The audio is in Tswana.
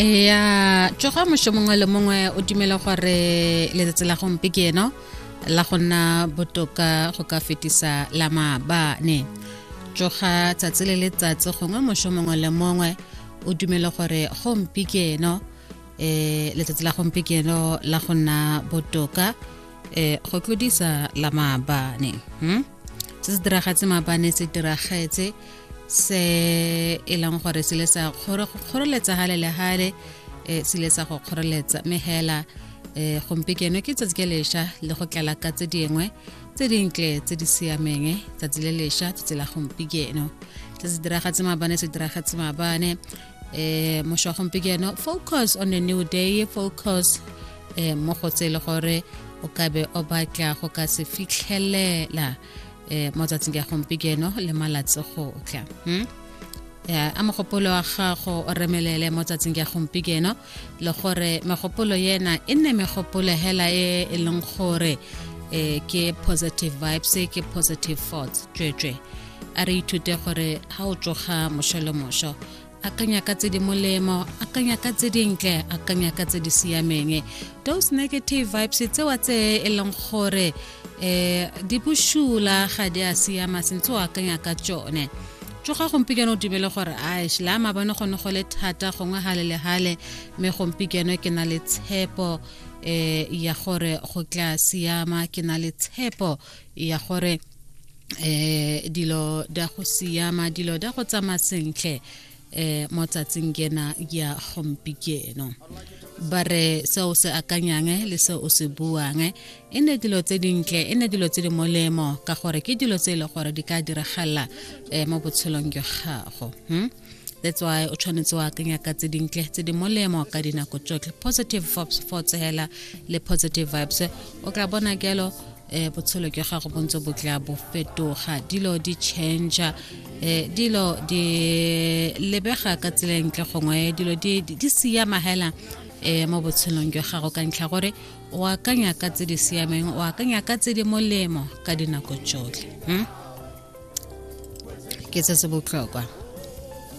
ya tsoga mosho mongwe le mongwe o dumela gore letsatsi la gompe ke eno la go nna botoka go ka fetisa la maabane tsoga tsatsi le letsatsi gongwe mosho mongwe le mongwe o dumela gore gompe ke eno eh letsatsi la gompe ke eno la go nna botoka eh go tlodisa la maabane hmm? se se diragetse mabane se diragetse se e leng gore se le sa kgoreletsa gale le gale um se le sa go kgoreletsa mme fela um gompieno ke tsatsi ke lesha le go tlala ka tse dingwe tse dintle tse di siameng tsatsi le lesha tsatsi la gompieno se se diragetse mabane se diragetse mabane eh moswa gompieno focus on a new day focus eh mo go tsele gore o ka be o batla go ka se fitlhelela eh mo tsatsing ya gompieno le malatsi go tla hmm? ya a mogopolo wa gago o remelele mo tsatsing ya gompieno le gore megopolo yena e nne megopolo hela e e leng gore eh ke positive vibes ke positive thoughts tswetswe a re ithute gore ga o tsoga moso le moso akanya ka tse di molemo akanya ka tse dintle akanya ka tse di siameng those negative vibes tsewa tse e leng gore um di boshula ga di a siama sentse o akanya ka tsone tsoga gompieno o dumele gore aish la mabone gone go le thata gongwe gale le gale mme gompieno ke na le tshepo eh ya gore go tla siama ke na le tshepo ya gore eh dilo da go siama dilo da go tsamaya sentle eh mo tsatsing kena ya gompikeno ba re se o se akanyang eh, le se o se buang eh. e ne dilo tse dintle e ne dilo tse di molemo ka gore ke dilo tse e le gore di ka diragala um mo botshelong jwa gago hmm? that's why o tshwanetse wa akanya ka tse dintle tse di molemo ka dinako tsotlhe positive vibes for tsela le positive vibes o tla bona kelo eh botshelo ke gago bontse bo tla bo fetoga dilo di change eh dilo di lebega ka tseleng tle gongwe dilo di di siya mahela eh mo botshelong ke gago ka ntlha gore o akanya ka tse di siameng o akanya ka tse di molemo ka dinako tsotlhe hmm? ke se se botlhokwa